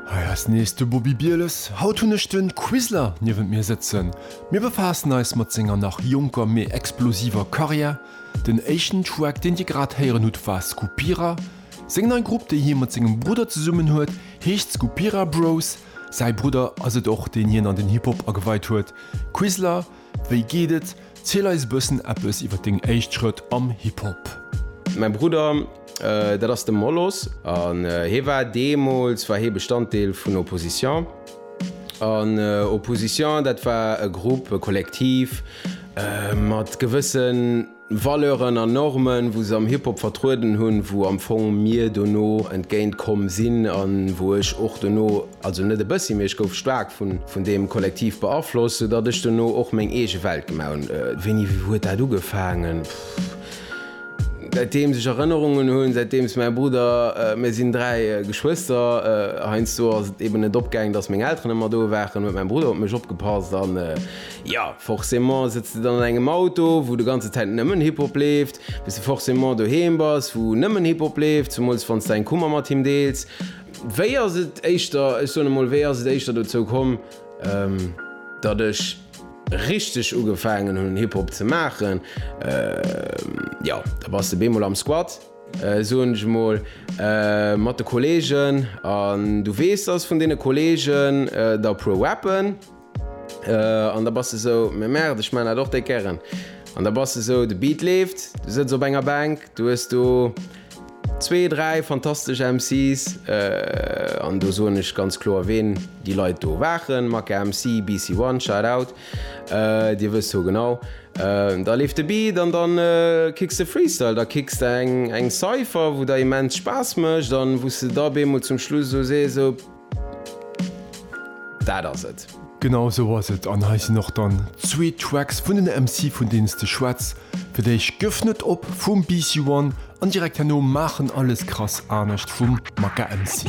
Hei ass nees de Bobi Bieles. Haut hunn ech de Quisler niewent mir sëtzen. Mir befaassen eis mat senger nach jonker mee explosiver Karriär. Den éischten Track deen dir grad héieren hutt war Skupira. Seng nei Grupp déi hie mat sengem Brudder zesummen huet heescht Skupira Bros. Säi Brudder ass et och deen hien an den Hip Hop ageweit huet. Quisler Wéi geet et? Ziel eis bëssen eppes iwwer deng éischt Schrëtt am Hip Hop. Mäi Brudder, dat ass de Molos, an hie war, deemools war hie Bestanddeel vun Opposition, an Opposition dat war e Grupp, e Kollektiv mat gewëssen, Valeuren an Normen, wou se am Hip-Hop vertrueden hunn, wou am Fong mir dono entgéint komm sinn an wou ech och dono, also net e bëssi, mee ech gouf staark vun deem Kollektiv beaflosst, sou datt ech dono och meng eege Welt gemaach hunn. Wéini huet dat ugefaangen? Pff, säitdeems ech Erënnerungen hunn, säitdeems mäi Brudder, mir sinn dräi Geschwëster, heiansdo ass et eeben net opgaangen, datt meng Elteren ëmmer do waren, huet mäi Brudder op mech opgepasst an, Jo, forcément sëtz de dann an engem Auto, wou de ganze Zäit nëmmen Hip-Hop leeft, bis de forcément doheem bass, wou nëmmen Hip-Hop leeft, zemools wann s de eng Kummer mat him deels. Wéi ass et éischter, ech soen emol, wéi ass et éischter dozou komm, datt ech richteg ugefaangen hunn, Hip-Hop ze maachen? Jo, da bass de bemol am Squat, soen ech emol, mat de Kolleegen, an du weess, datt vun deene Kolleegen der e puer rappen. An da bass de sou, mais merde, ech maan dat och déck gären. An da bass de sou, de Beat leeft, du sëtz op enger Bänk, du hues do zwee, dräi fantastesch MC's, an do soen ech ganz kloer ween déi Leit do waren, Maka MC, BC One, shout out, dir wësst ho genau, da leeft de Beat an dann kicks de Freestyle, da kicks de eng Cypher, wou der immens Spaass mécht an wou s de da beemol zum Schluss sou sees, sou. Dat ass et. Genau esou ass et an hei sinn och dann zwee Tracks vun den MC vun deenen s de schwätz fir d'éischt Gëff net op vum BC One an direkt herno Maachen alles krass anescht vum Maka MC.